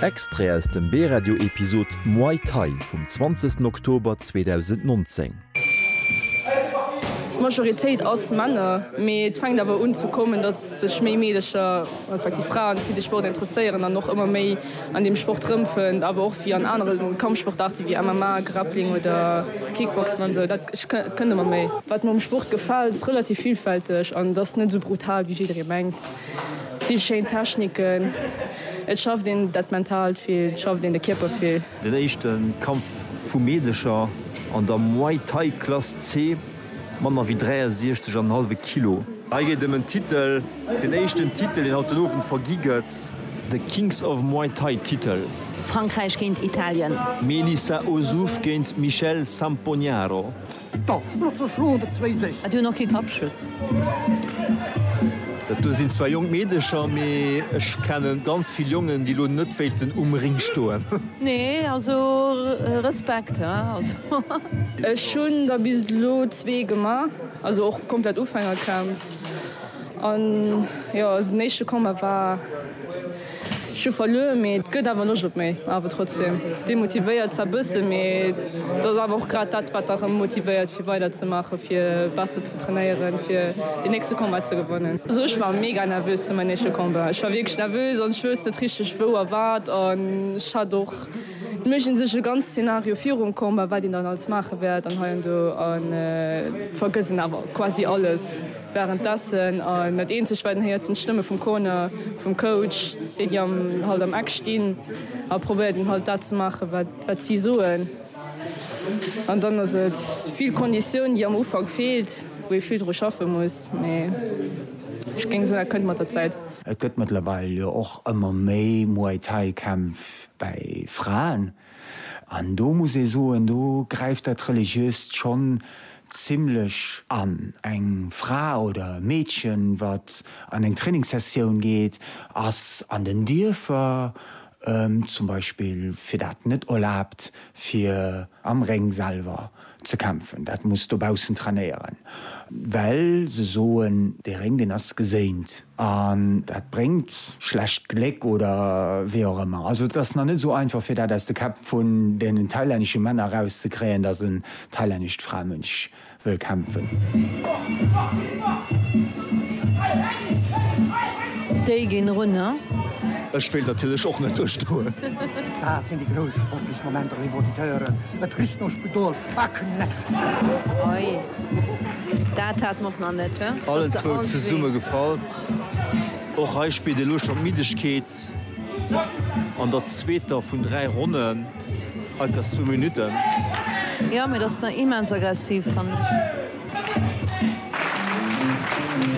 Extrait aus dem B-Radio Episode Muay Thai vum 20 Oktober 2019. D'Majoritéit ass Männer, mee et fänkt awer un ze kommen, dass sech méi Meedecher, respektiv Fraen, fir de Sport interesséieren an och ëmmer méi an deem Sport rëmfënnt, awer och wéi an anere Kampfsportaarte wéi MMA, Grappling oder Kickboxen an esou. Dat kënnt ëmmer méi. Wat mer um Sport gefält, ass relativ villfälteg an et ass net esou brutal, wéi jidderee mengt. Vill schéin Techniken, et schafft een dat Mentaalt vill, et schafft een de Kierper vill. Den éischte Kampf vu Meedercher an der Muay Thai Klass C, manner wéi 63 an en hallwe Kilo. Hei geet et ëm en Titel, den éischten Titel deen haut den Owend vergi gëtt. De Kings of Muay Thai Titel. Frankräich géint Italien. Melissa Ozouf géint Michelle Sampognaro. Et hunn och kee Kappschutz. Dat do sinn zwar jonk Meedecher, mee ech kenne ganz vill Jongen, déi elo net wéilten um Ring stoen. Nee, also Respekt, hä? Ech hunn der bis elo zwee gemaach, also och komplett Ufängercamp. An jo, den éischte Combat war. Ech hu verluer, mee et gëtt awer Loscht op méi. Awer trotzdeem demotivéiert zwar bëssen, mee et ass awer och grad dat, wat erëm motivéiert fir weider ze maachen, fir besser ze trainéieren, fir deen nächste Combat ze gewannen. Also ech war mega nervös fir mäin éischte Combat. Ech war wierklech nervös an ech wouss net richteg wou a wat an ech hat och et méigend sech e ganz Szenario virum Combat, wat een dann alles maache wäert an heiando an vergëss een awer quasi alles. Wärenddessen, a net eenzeg wäiten, héiert een d'Stëmme vum Corner, vum Coach, déi déi am halt am Eck stinn a probéiert een halt dat ze maachen wat wat si soen. An dann ass et vill Konditioun déi am Ufank feelt, wou ee vill dru schaffe muss, mee ech géing soen dat kënnt mat der Zäit. Et gëtt mëttlerweil jo och ëmmer méi Muay Thai Kämpf bäi Fraen. An do muss ee soen, do gräift dat Religiöst schonn zimlech an. Eng Fra oder e Meedchen, wat an eng Trainingssessioun geet, ass an den Dierfer zum Beispill fir dat net erlaabt, fir am Réng selwer Ze kämpfen, dat muss dobaussen trainéieren, well se soen, dee Réng, deen ass geséint an dat bréngt schlecht Gléck oder wéi och ëmmer. Also et ass nach net esou einfach, fir dat aus de Käpp vun deenen thailännesche Männer erauszekréien, datt en thailännescht Framënch wëll kämpfen. Déi ginn erunner. Ech wéilt natierlech och net duerchstoen. Dat sinn déi grouss sportlech Momenter, léif Auditeuren. Et riecht no Spidol a Knäscht. Oi, dat hat mer och nach net, he? Allen zwou zesumme gefall. Och hei spillt elo schonn d'Middegkeet an der zweeter vun dräi Ronnen. Hei ka zwou Minutten. Jo, mee dat ass nach immens aggressiv, fannen ech.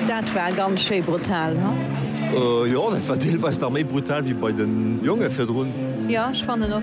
Dat war ganz schéi brutal, huh? Jo, dat war deelweis nach méi brutal wéi bei den Jongen virdrun. Jo, ech fannen och.